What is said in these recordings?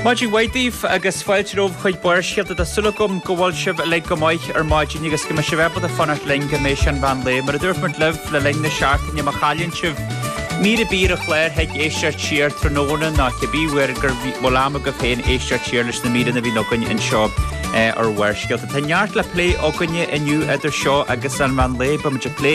Maidin mhaith daoibh agus fáilte romhaibh chuig Barrscéalta. Tá súil agam go bhfuil sibh uilig go maith ar maidin agus go mbeidh sibh ábalta fanacht linn go dtí an mheán lae. Mar a dúirt muid libh le linn na seachtaine má chailleann sibh mír ar bith ar an chlár thig éisteacht siar tráthnóna nó cibé uair go bhfuil am agat féin éisteacht siar leis na míreanna a bhíonn againn anseo ar Bharrscéalta. Tá neart le plé againne inniu idir seo agus an meán lae, beidh muid ag plé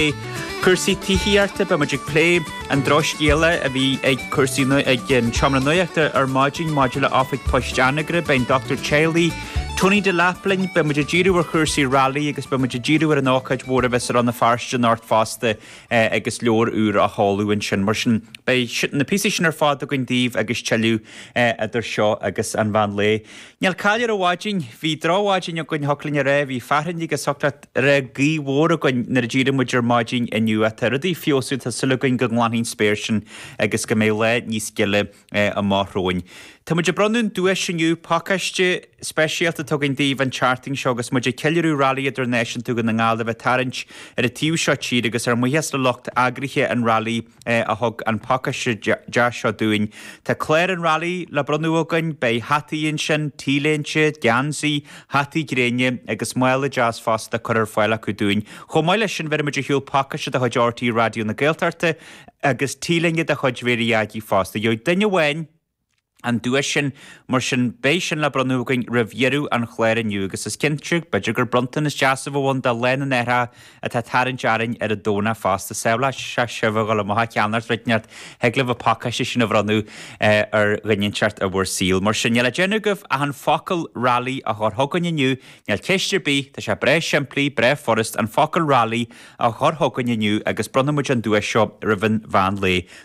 cúrsaí tithíochta, beidh muid ag plé An drochscéal a bhí ag Cúrsaí ag an Seomra Nuachta ar maidin maidir le Oifig Poist Anagaire, beidh an Dr Teaghlaigh, Tony Delap linn. Beidh muid ag díriú ar chúrsaí rally agus beidh muid ag díriú ar an ócáid mhór a bheas i Rann na Feirste anocht fosta agus leabhar úr á sheoladh ansin. Mar sin, beidh na píosaí sin ar fad againn daoibh agus tuilleadh idir seo agus an mheán lae. Níl caill ar an mhaidin. Bhí drochmhaidin againn, thiocfadh linn a rá. Bhí fearthainn agus thiocfadh leat. gaoth mhór againn nuair a d'éirigh muid ar maidin inniu tá rudaí feabhsaithe tá súil againn go nglanfaidh an spéir sin agus go mbeidh lá níos gile amach romhainn. Tá muid ag bronnadh an duais inniu, pacáiste speisialta a thabhairt daoibh an tseachtain seo agus muid ag ceiliúradh Rally Idirnáisiúnta Dhún na nGall a bheith ag tarraingt ar an taobh seo tíre agus ár mbuíochas le lucht eagraithe an Rally a thug an pacáiste deas seo dúinn. Tá clár an Railí le bronnadh againn, beidh hataí ansin, t-léinte, geansaí, hataí gréine agus mála deas fosta curtha ar fáil acu dúinn. Chomh maith leis sin, bheirfimid ar shiúl pacáiste de chuid RTÉ Raidió na Gaeltachta agus t-léine de chuid Mary Aggie fosta. Gheobhaidh duine amháin. an duais sin. Mar sin, beidh sin le bronnadh againn roimh dheireadh an chláir inniu agus is cinnte, b'fhéidir gur bronntanas deas a bheadh ann do Lá na nAithreacha atá ag tarraingt orainn ar an Domhnach fosta sábhálfaidh sibh ag dul amach ag ceannacht rud inteacht, thig libh an pacáiste sin a bhronnadh ar dhuine inteacht i bhur saol. Mar sin, níl le déanamh agaibh ach an focal Rally a chur chugainn inniu, níl ceist ar bith, tá sé breá simplí, breá furast, an focal Rally a chur chugainn inniu agus bronnfaimid an duais seo roimh an mheán lae.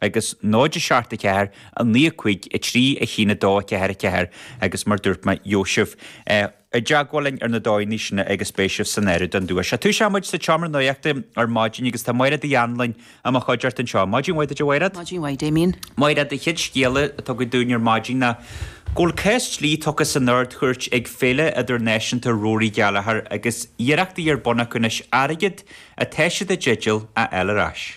agus 0, 7, 4, 9, 5, 3, 1, 2, 4, 4, agus mar dúirt mé, gheobhaidh sibh i dteagmháil linn ar na dóigheanna sin agus beidh sibh san áireamh don duais. Sea, tosóidh muid sa tSeomra Nuachta ar maidin agus tá Máiréad Uí Annluain i mo chuideacht anseo. Maidin mhaith duit, a Mháiréad. Maidin mhaith, Damien. Máiréad, an chéad scéal atá agat dúinn ar maidin ná go bhfuil cás dlí tugtha san Ard-Chúirt ag Féile Idirnáisiúnta Rory Gallagher agus iarrachtaí ar bun acu anois airgead atá siad i dteideal a fháil ar ais.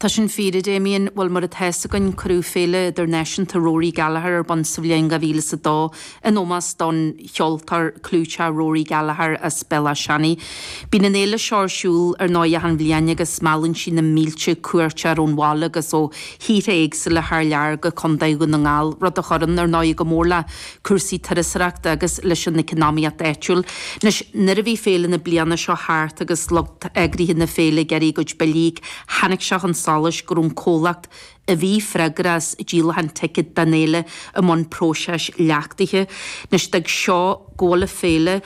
Tá sin fíor, a Damien. Bhuel, mar atá 'fhios againn, cuireadh Féile Idirnáisiúnta Rory Gallagher ar bun sa bhliain 2002 in ómós don cheoltóir clúiteach Rory Gallagher as Béal Átha Seanaidh. Bíonn an fhéile seo ar siúl ar ndóigh achan bhliain agus meallann sí na mílte cuairteoir ón bhaile agus ó thíortha éagsúla thar lear go Contae Dhún na nGall, rud a chuireann, ar ndóigh, go mór le. cúrsaí turasóireachta agus leis an eacnamaíocht áitiúil. Anois nuair a bhí féile na bliana seo thart agus lucht eagraithe na féile ag iarraidh a gcuid billí a íoc tháinig sé chun solais go raibh an comhlacht a bhí freagrach as díolachán ticéad don fhéile i mbun próiseas leachtaithe. Anois d'fhag seo go bhfuil an fhéile.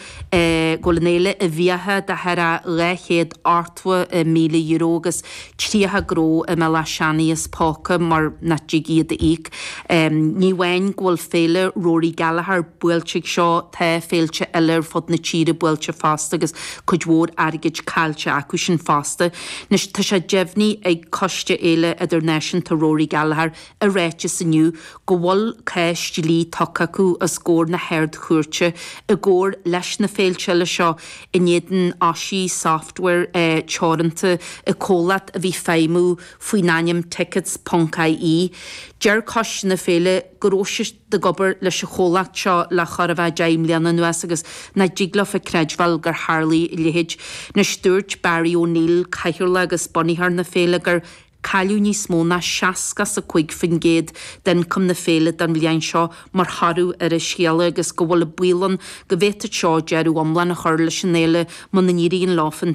go bhfuil an fhéile i bhfiacha de thoradh dhá chéad ochtó míle euro agus tríocha gnó i mBéal Átha Seanaidh as póca mar nach dtig iad a íoc. Ní amháin go bhfuil Féile Rory Gallagher buailte ag seo, tá féilte eile ar fud na tíre buailte fosta agus cuid mhór airgid caillte acu sin fosta. Anois, tá sé deimhnigh ag Coiste Fhéile Idirnáisiúnta Rory Gallagher, i ráiteas inniu go bhfuil cás dlí tugtha acu os comhair na hArd-Chúirte i gcomhar leis na féilte eile seo in éadan Osi Software Teoranta an comhlacht a bhí ag feidhmiú faoin ainm Tickets Ponc IE. Deir coiste na féile go raibh siad ag obair leis an chomhlacht seo le chóir a bheith deich mbliana anuas agus nach dtig leo a creidbheáil gur tharlaigh a leithéid. Anois dúirt Barry O'Neill, cathaoirleach agus bunaitheoir na féile, gur. Cailleadh níos mó ná seasca is a cúig faoin gcéad d'ioncam na féile don bhliain seo mar thoradh ar an scéala agus go bhfuil an baol ann go bhféadfadh seo deireadh iomlán a chur leis an fhéile muna n-éiríonn leo an